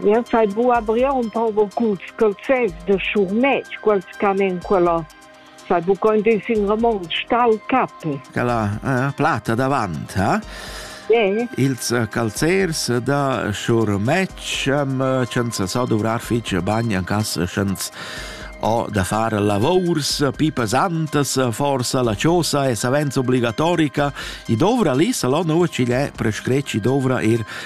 Jeu fai buca brir un poco culs calzers da schurmetg, quels ch'han en quella. Sai buca in dis in romontsch tal cape. Quella eh, platta davant, ha? Yeah. Ils eh, calzers da schurmetg eh, senza so dovrar fitg bagn en cas schens ho da far lavors pi pesantas, forsa la ciosa è savens obbligatorica, i dovra lì salon ucigl è prescreci dovra ir